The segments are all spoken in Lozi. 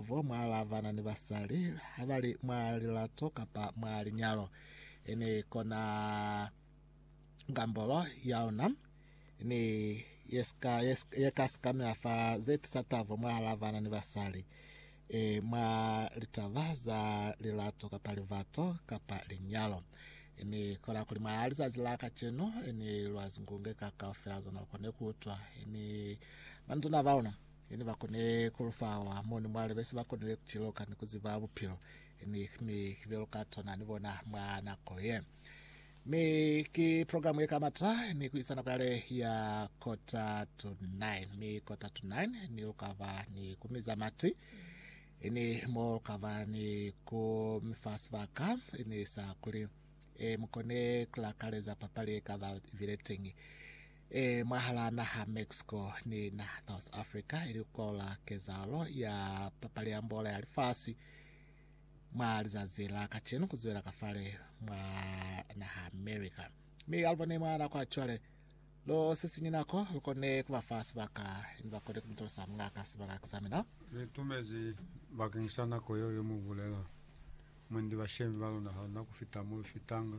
Bo mwa lavana ni basali ha ba li mwa lilato kapa mwa linyalo, i ni kona ngambolo ya ona ni ye sika ye sika- ye ka sikamela fa ze tisa tabo mwa lavana ni basali, e mwa litaba za lilato kapa livato kapa linyalo. I ni kona kuli mwa lizazi la kacenu i ni lwa zingunge ka kaufela zona lu kone ku utwa, i ni banatuna ba luna. Ine bakone kulufawa moni mwa lebesi bakonile kuciloka ni kuziba bupilo ni mi belo ka tona ni bona mwa nako ye. Mi ki program ye kamata ni kuisa nako yale ya kota to 9 mi kota to 9 ni lukaba ni kumiza mati ini mo lukaba ni kumifa sibaka ini sa kuli e mukone kulakaleza papali ye kaba vile tengi e mwahalaa naha Mexico ni naha South Africa, ili kukola kezahalo ya papali ya mbola ya lifasi mwa lizazi la kacenu kuzwela kafale mwa naha America. Mi alubone mwa nako ya cwale, lo sisinyi nako lukone kubafa sibaka ni bakone kumutolosa mungaka sibaka kisa mina. Ni tumezi bakeng sa nako yeo ye mubulela, mwendi bashemi balona haluna kufita mo lufitanga.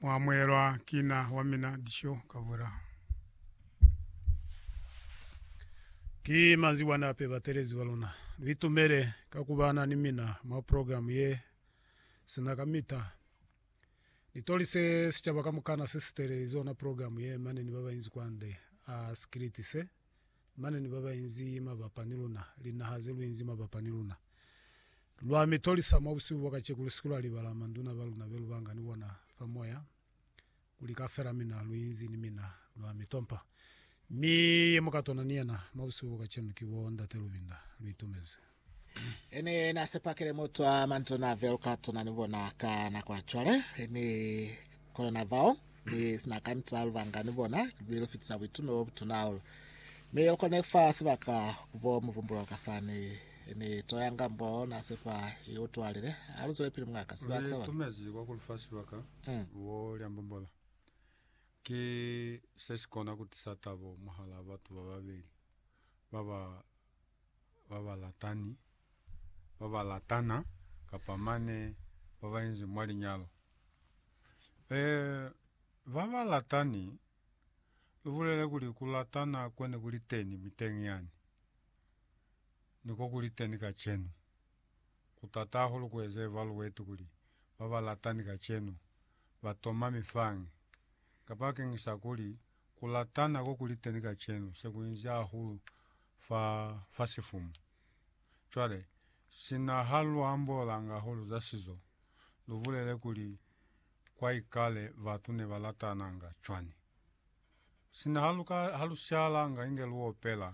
Mwa amuhelwa ki na wa mina disho ka vula. Ki manzi bwani ape batelezi ba luna. Lu itumele ka ku bana ni mina mwa program ye sina kamita. Ni tolise sicaba kamukana se si teleli zona program ye mane ni ba bainzi kwande a sikiliti se. Mane ni babainzi mabapa ni luna, linaha zeluinzi mabapa ni luna. Lwa mi tolisa mwa busihu bwa kaceku, lusiku lwa libala manduna baluna be lubanga ni bona fa moya, kuli kafela mina luinzi ni mina lwa mi tompa. Mi ye mu ka tona ni yena mwa busihu bwa kacenu ki bo Ndate Lubinda, lu itumezi. Ene na sepakele mutwa manzwi na velukatso na ni bona ka nako ya cwale, ni kono na vao ni sina kanca lubanga ni bona, mi lu fitisa buitume bo butuna hahulu. Mi lu kone kufa sibaka kubo muvumbulo ka fani ni to ya ngambo na sepa i utwalile. Ha lu zwele pili mungaka. Sibaka sa bona. Lu itumezi kwa kulufa sibaka kubo lya mbombola. Ki se si kona kutisa tabo mwahala batu bababeli baba babalatani, babalatana, kapa mane babainzi mwa linyalo. E, babalatani, lubulele kuli kulatana kwene kuliteni miteñi yani, niko kuliteni kacenu. Kutata hahulu kueze evaluate kuli babalatani kacenu batoma mifange, kapa keñisa kuli Ku latana ko kuli teni kacenu se ku inzi hahulu fa, fa sifumu. Cwale, sina ha lu ambolanga hahulu za sizo, lu bulele kuli, Kwa ikale batu ne ba latananga cwani? Sina ha lu ka, ha lu sialanga inge lu opela,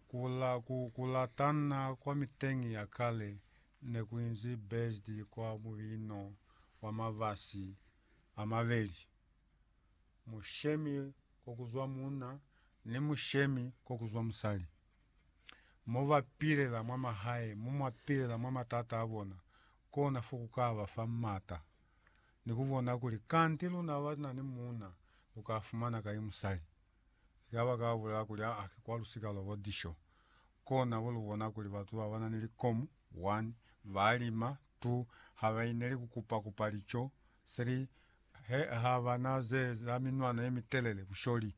ku, la, ku, ku latana kwa miteñi ya kale ne ku inzi based kwa mubino wa mabasi a mabeli. mushemi ko kuzwa muuna ni mushemi ko kuzwa musali. Mo ba pilela mwa mahae mo mwa pilela mwa matata a bona, kona fo ku ka ba fa m'ata ni ku bona kuli kanti luna ba na ni muuna lu ka fumana kai musali. Ki ka ba ka bulela kuli, Aa, ki kwa lu si ka lwa bo disho. Kona bo lu bona kuli batu ba ba na ni likomu, one, ba lima, two, ha ba ineli ku kupa-kupa lico, Seli, He, ha ba na ze za minwana ye mitelele, busholi.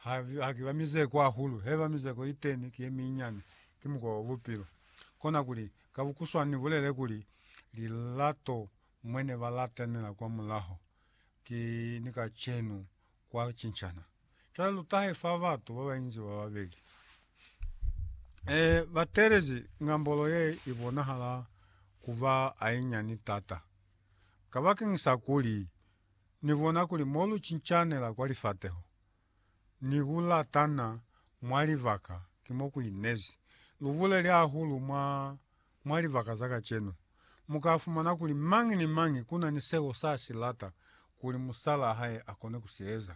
Ha, ha ki ba mizeko ahulu. He ba mizeko iteni ki ye minyane. Ki mukwa wa bupilo. Kona kuli, ka bukuswani ni bulele kuli, lilato mwe ne ba latanela kwa mulaho, ki ni kacenu. kwa cincana. Cwale lu tahe fa batu ba bainzi ba babeli. E, ba telezi ngambolo ye i bonahala ku ba ainyani tata. Kabakeng sa kuli, Ni bona kuli mo lu cincanela kwa lifateho, ni ku latana mwa libaka ki mo ku inezi. Lu buleli hahulu mwa Mwa libaka za kacenu, mu ka fumana kuli mañi ni mañi ku na ni seo sa si lata kuli musalaa hae a kone ku si eza.